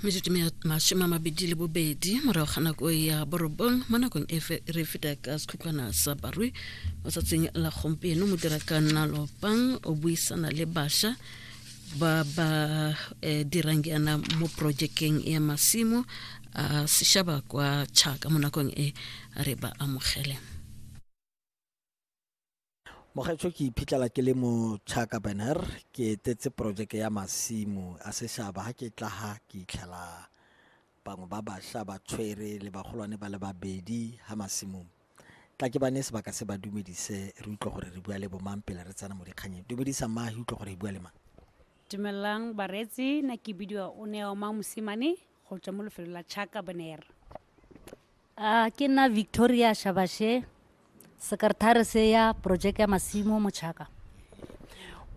metsotso masome a mabedi le bobedi morago ga nako ya borobong mo nakong e re feta ka sekhutlwana sa barui mo tsatsing la gompieno mo dira ka nna lopang o buisana le bašwa ba ba eh, dirang yana mo projekeng ya masimo a sešaba kwa chaka mo nakong e re ba amogele Mogaetsho ke iphitlhela ke le mo Chaka Banner ke etetse projeke ya masimo a seshaba ha ke tla ha ke itlhela bangwe ba basha ba tshwere le bagolwane ba le babedi ha masimong tla ke bane sebaka se ba dumedise re utlwe gore re bua le bomang pele re tsena mo dikganyeng dumedisa mma re utlwe gore e bua le mang dumelang bareetsi na ke bidiwa o ne wa mosimane go tswa mo lefelong la chaka bonair a ke nna victoria shabashe sekretare se ya projeke ya masimo mo chaka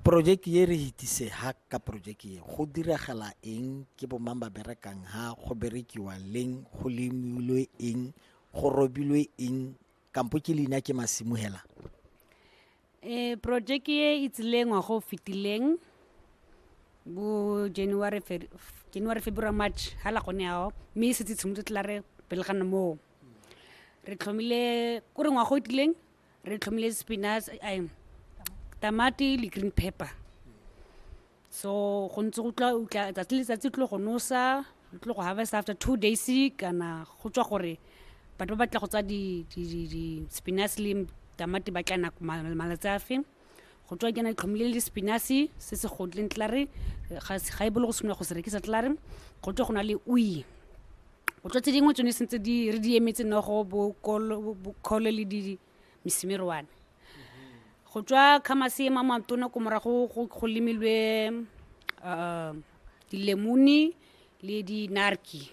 projeke e re hitise ha ka projeke e go diragala eng ke bomang ba berekang ha go berekiwa leng go lemilwe eng go robilwe eng kampo ke leina ke masimo hela um projeke e e tsileng ngwaga o fetileng bo january january february march ha la gone ao mme e setse tshimotse tla re pele ga nna moo re tlhomile ko re ngwaga o tileng re tlhomile spinach tamati le green pepper so go ntse go tla utla tsatsi le tsatsi tlo go nosa tlo go harvest after two days kana go tswa gore batho ba batla go tsa di di di di spinach le tamati ba tla nako malatsi a fe go tswa ke na tlhomile le spinach se se godleng tlare ga ga e bolo go simolola go se rekisa tlare go tswa go na le ui go tswa tse dingwe tsone sentse di re di emetse nogo bo kolo bo kolo le di mesimiroane go tswa khamase e mamatona ko morago go lemilwe um dilemone le dinarki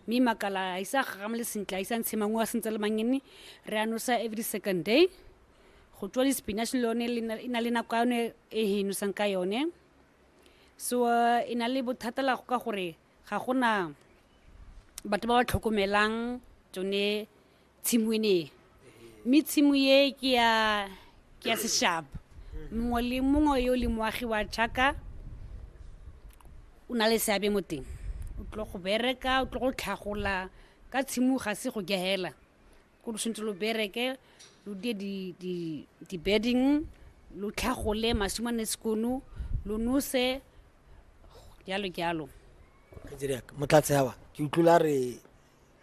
mme makala a isa gagamole sentle a isa ntshe mangwe a sentse le mangene re a nosa every second day go tswa di-spinach le yone e na le nako yone e e nosang ka yone so eh, e na le bothata la go ka gore ga gona batho ba ba tlhokomelang tsone tshimo e ne e mme tshimo e ke ya ke ya seshaba mongwe le mongwe yo le moagi wa jaka o na le seabe mo teng o tlo go bereka o tlo go tlhagola ka tshimo ga se go gehela ko lo tshwanetse lo bereke lo die di- di- di-bedding lo tlhagole masimane sekono lo nose jalo jalo Kgetsedi ya ka, motlatse awa ke utlwile a re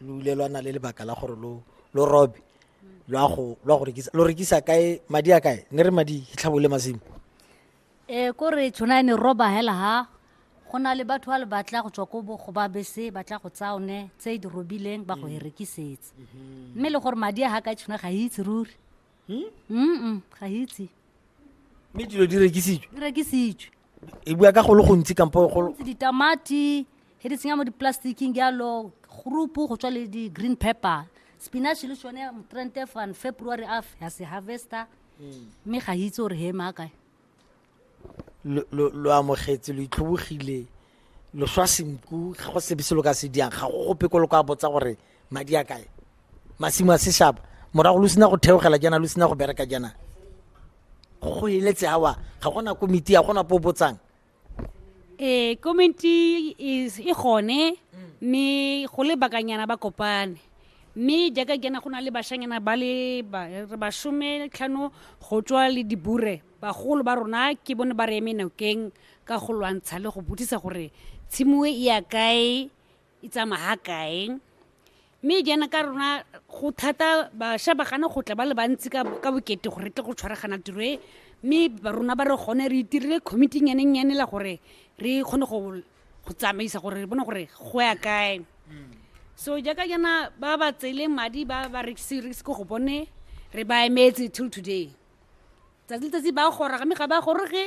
lo ile lwa na le lebaka la gore lo lo robe lwa go lwa go rekisa lo rekisa kae madi a kae ne re madi hitlhabole masimo e ko re tshwana ne roba hela ha go na le batho ba le batla go tswa ko bo go ba bese ba tla go tsaya one tse di robileng ba go e rekisetsa mme le gore madi a ga ka tshwana ga e itse ruri mm ga itse mme dilo di rekisitswe di rekisitswe e bua ka go le gontsi kampo go ditamati he di tsenya mo diplasticking jalo groupu go tswa le di-green pepper spinach le sone trente fan february af ya se harvester mm. mme ga itse gore he maakae lo amogetse lo itlhobogile lo swa senku ga go sebe se lo ka se diang ga go gope ko lo ka botsa gore madi a kae masimo a seshaba morago lo sena go theogela jaana lo sena go bereka jaana go eletse awa ga gona komiti ya gona po botsang ee komiti e gone mme go le bakanyana ba kopane mme jaaka kena go na le bashanyana ba le basome tlhano go tswa le dibure Bagolo ba rona ke bone ba re eme nokeng ka go lwantsha le go botsisa gore tshimoe e ya kae e tsamaha kae mme jaana ka rona go thata bašwa ba gana go tla ba le bantsi ka bokete gore tle go tshwaragana tiro e mme rona ba re gone re itirile committee nyanennyane la gore re kgone go tsamaisa gore re bone gore go ya kae so jaaka jaana ba ba tseele madi ba ba rekise ko go bone re ba emetse till today tsatsi letsatsi ba gora ga me ga ba goroge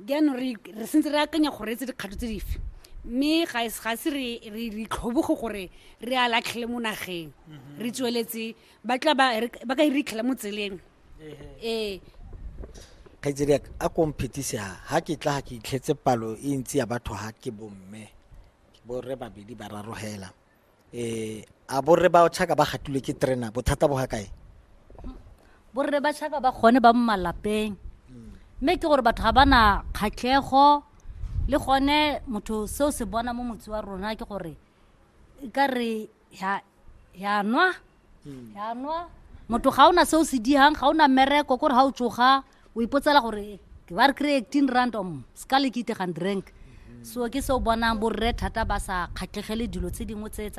jaanong re re sentse re akanya gore etse dikgato tse dife mme ga e- ga se re re re itlhoboge gore re a latlhele mo nageng re tsweletse ba tla ba re- ba ka e ritlhela mo tseleng ee kgaitsedi yaka a ko mphetise ha ha ke tla ga ke itlhetse palo e ntsi ya batho ha ke bomme borre babedi ba raro hela eh a borre ba tšhaka ba gatilwe ke terena bothata bo ga kae borre ba tšhaka ba gone ba mo malapeng mme ke gore batho ga ba na kgatlhego le gone motho seo se bona mo motse wa rona ke gore e ka re ya ya nwa hmm. yanwa motho ga o na se o se digang ga o na mmereko kore ga o tsoga o ipotsela gore ke ba re kry eighteen rand om se ka le ke itegang drink so ke se o bonang borre thata ba sa kgatlhegele dilo tse dingwe tse tsa